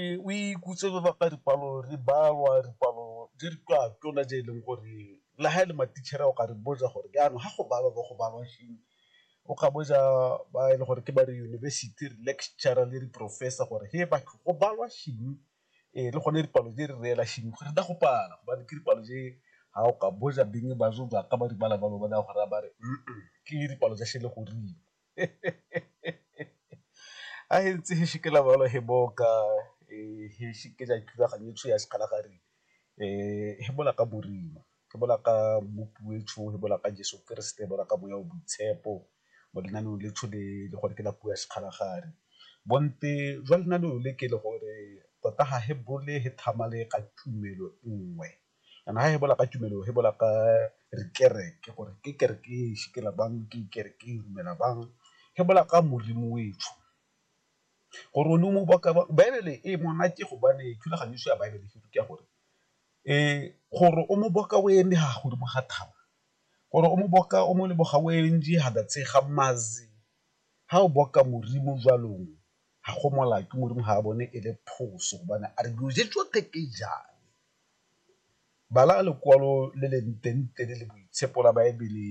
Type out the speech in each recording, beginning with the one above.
Ee, o ikutse re bapa dipalo re balwa dipalo di re kwa tona je e leng gore le ha e le matitšhere o ka re botsa gore jaanong ga go balwa bo go balwa eng, o ka botsa ba e le gore ke ba re yunibesithi re lecturer le di-professor gore he batho go balwa eng ee le gone dipalo di re reela eng go feta go pala gobane ke dipalo tse ha o ka botsa beng ba zo jaaka ba di bala ba lo ba naya go raya ba re ke dipalo tsa sele goreng. a e ntse he shikela balo he boka he shikela thulaganyo tsho ya sekgala gare he bola ka borima ke bola ka mmopi o etsho he bola ka Jeso Keresete bola ka boya o boitshepo mo lenaneong le tsho le le gore ke la puo ya sekgala gare bonte jwa lenaneo le ke le gore tota ga he bole he tlhamale ka tumelo nngwe. Jaanong ga e bola ka tumelo e bola ka dikereke gore ke kereke e sikela bang ke kereke e dumela bang e bola ka Modimo o etsho gore o ne o mo baka ba baebele e monate go bane thulaganyo se ya baebele se rute gore gore o mo boka o eme ha godimo ga thaba gore o mo boka o mo leboga o ntse ha ba tshega mazi ha o boka Modimo jalong ga go molato Modimo ga a bone e le phoso gobane a re dilo tse tsotlhe ke jang. Bala lekwalo le le ntentle le le boitshepo la Baebele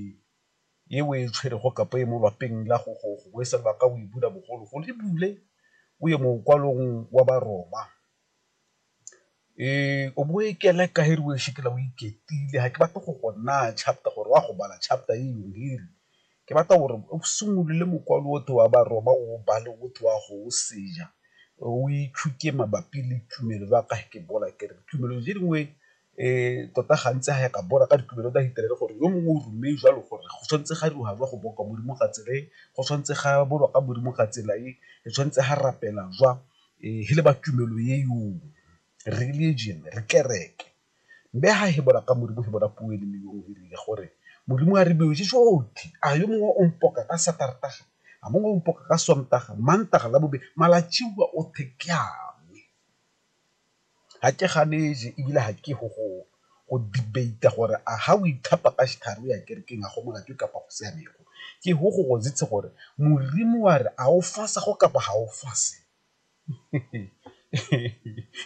e o e tshwerego kapa e mo lwapeng la gogo gongwe se lebaka o e bula bogologolo e bule o ye mokwalong wa Baroma. O bo o e keleka e re o e shekela o iketlile ga ke batle go go naya chapter gore o a go bala chapter e . Ke batla gore o simolole mokwalo o te wa Baroma o o bale o te wa go o senya, o itshuke mabapi le tumelo ba ka ke bola ke re tumelo tse dingwe tota gantsi ga ya ka bola ka ditumelo tsa Hitler gore yo mongwe o ruile jalo gore go tshwanetse ga dira jwa go boa ka Modimo ka tsela e, go tshwanetse ga bolwa ka Modimo ka tsela e, re tshwanetse ga rapela jwa, e le ba tumelo e , religion, kereke. Mme ha hebola ka Modimo, hebola puo e lemiweng e rile gore, Modimo a re bioje jotlhe, a yo mongwe o mpoka ka Satartaga, a mongwe o mpoka ka Sontaga, Mantaga, Labobedi, malatsiwa othe ke a me. Ga ke ganeje ebile ga ke go go go debate-a gore a ga o ithapa ka setlhare o ya kerekeng a go molato kapa go siamego, ke go go gore Modimo wa re a o fasa go kapa ga o fase.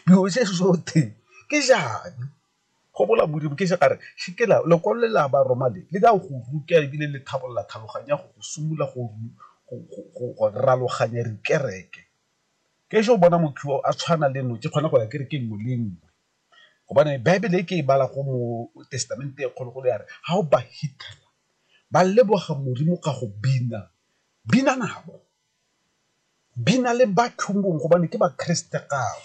dilo se sote ke jane go bola modimo ke se kare se ke la lekwalo le la ba roma le le ka go ruta ebile le tlhabolola tlhaloganya go go simolola go go raloganya dikereke ke se o bona motho yo a tshwana le notse kgona go ya ke re ke nngwe le nngwe gobane baebele e ke e bala go mo testamente e kgolo go le yare ga o ba ba leboga modimo ka go bina bina nabo di na le bathong bongwe gobane ke bakeresete gao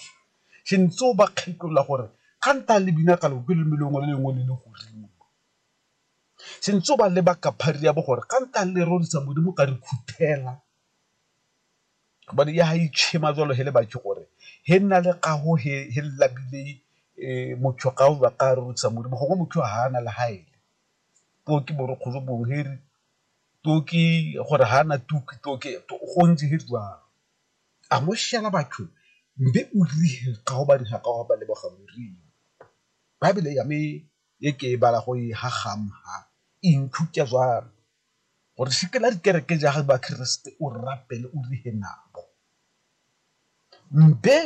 se ntse o ba kgetolola gore ga nta le bina ka loko leleme lengwe le lengwe le le godimo se ntse o ba leba ka phari ya bo gore ga nta le rorisa modimo ka re khuthela gobane ya ga itšhema jalo he le bake gore he nna le gago he he labile um motho ga o ba ka rorisa modimo gongwe motho ga a na le gaele poo ke borokgolo bongwe he re Toki gore ha na toki toki go ntse he jwalo a mo shela batho mbe o rihe ka hobane ha ka ba leboga morimo bible ya me e ke e bala go e ha gam ha inthuta jwalo gore se ke la dikereke ja ga ba keresete o rapele o rihe nabo mbe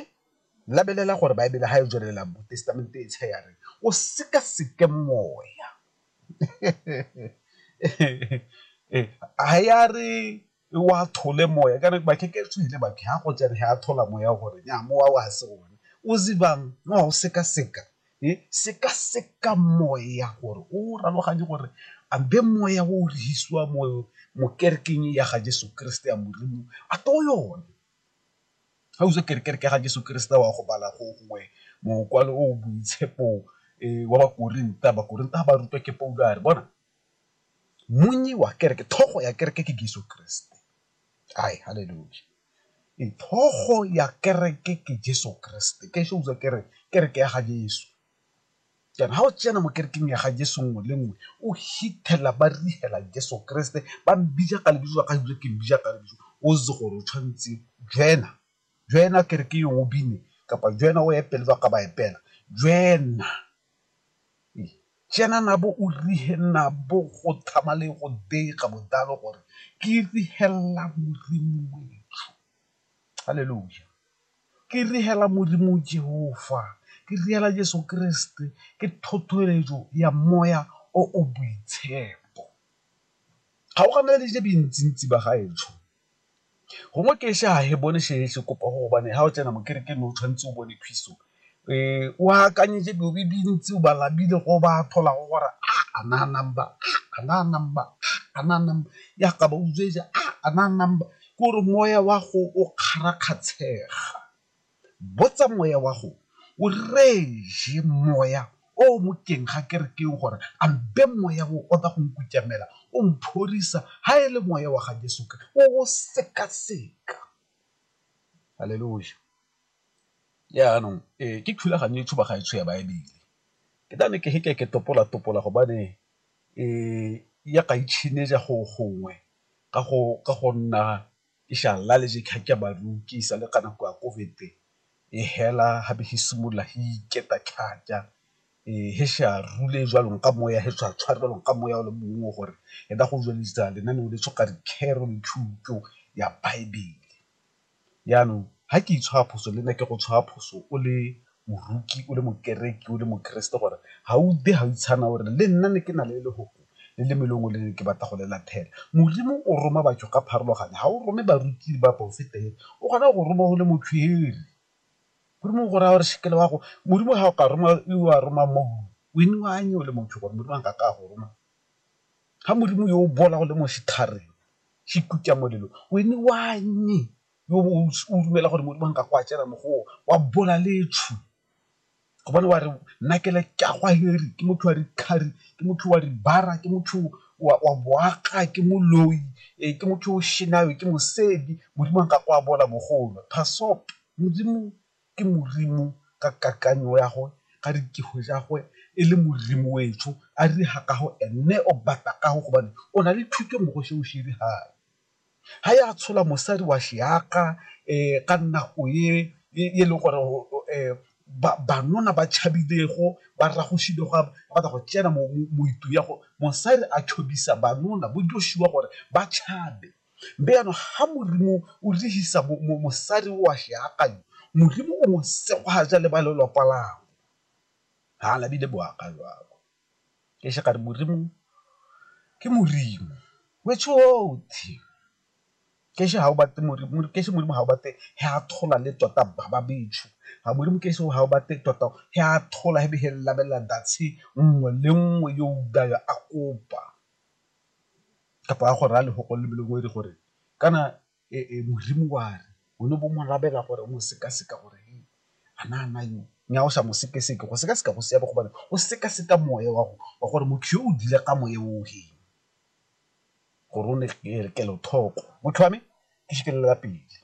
labelela gore bible ha e tswelela mo testamente e tshe ya re o seka seke moya ha ya re wa thole moya ka ba ke ke tswile ba ke ha go tsene ha thola moya gore nya mowa wa se one o zibang no o seka seka e seka seka moya gore o raloganye gore a be moya o re hisiwa mo mo kerekeng ya ga Jesu Kriste ya modimo a to yone. Ga o itse gore kereke ga Jeso Keresete wa go bala gongwe mokwalo o o boitshepo wa Bakorinta, Bakorinta ga ba rutwa ke Paulo a re bona monnyi wa kereke, tlhogo ya kereke ke Jeso Keresete. Hai haleluya, tlhogo ya kereke ke Jeso Keresete, ke ise utlwa kere kereke ya ga Jeso. jaana ga o tsena mo kerekeng ya ga jeso nngwe le nngwe o hithelela ba rigela jeso keresete ba mbija ka lebiso la ga ebile ke mbija ka lebiso o itse gore o tshwanetse jena jena kereke yo o bine kapa jena o epele ba ka ba epela jena jena na bo o rihe nna bo go thama le go dega bodalo gore ke rihelela modimo wetsho Haleluja. Ke riela Modimo Jehofa, ke riela Jesu Keresete, ke thothoeletso ya moya o o boitshepo. Ga o gana le dilo dintsintsi ba gaetsho, gongwe ke ise ga he bone se se kopa go gobane ga o tsena mo kerekeng o tshwanetse o bone phiso o akanyetse dilo di dintsi o ba labile go ba tholago gore a a na number a na number a na number ya ka ba utswetsa a na number ke gore moya wa go o kgarakgatshega botsa moya wa go o reje moya o mo keng ga kerekeng gore a mpe moya o o tla go nkutamela o mphorisa ha e le moya wa ga Jesu o o sekaseka haleluya Jaanong ee ke thulaganyo e tshuba ga e tsho ya Baebele, ke tla ne ke ke ke topola-topola gobane ya ga itšhineja go gongwe ka go nna ke sa le ka nako ya COVID e hela ga be e simolola e iketa thata e sa rule jalo ka moya e sa tshware jalo ka moya o le mongwe gore e ka go tsweletsa lenaneo le ya Baebele. Jaanong, ga ke itshwara phoso, le nna ke go tshwara phoso o le moroki, o le mokereki, o le mokeresete gore ga o utlwe ga o itshana o re le nna ne ke na le lefoko le le mo e leng gore le ne ke batla go le latlhela. Modimo o roma batho ka pharologano, ga o rome baruti le baporofeta fela, o kgona go go roma o le motshwere. Modimo o go raya gore se ke wa go, Modimo ga o ka roma yo a romang mo go wena, o anye o le motho gore Modimo a nkake a go roma. Ga Modimo yo o bola o le mo setlhareng. Ke ikutlwa molelo wene wannye yo bo o dumela gore modimo a nka go a tsena mo go wa bola letshu gobane wa re nna ke le ka gwa heri ke motho wa di thari ke motho wa di bara ke motho wa boaga ke moloi e ke motho o shenang ke mosedi modimo a nka go a bola bogolo modimo ke Modimo ka kakanyo ya gwe ga re kego ja gwe e le Modimo wetsho a re ha ka go ene o batla ka go gobane o na le thuto mo go seo se re ha ha ya tshola mosadi wa seaka um ka nako e e leng gore banna ba tšhabilego ba ragositse go batla go tsena mo ya go mosadi a tšhodisa banna bo Joshua gore ba tšhabe. Mme jaanong ga Modimo o lehisa mosadi o a sheakanyo, Modimo o mo segogaja le ba lelwapa lagwe. Ga la bile boaka jalo. Ke shaka re Modimo ke Modimo. Ke she ga o batle Modimo, ke she Modimo ga o batle he a thola le tota ba ba betsho. Ga Modimo ke she ga o batle tota he a thola he be he labelela nngwe le nngwe yo a kopa. kapa a go raya lefoko le le lengwe gore kana modimo wa re o ne bo mo rabela gore o mo sekaseka gore a na a na yo nnyaa o sa mo sekaseka, go sekaseka go siame gobane o sekaseka moya wa wa gore motho yo o dile ka moya o feng gore o ne kelothoko motho wa me ke pele.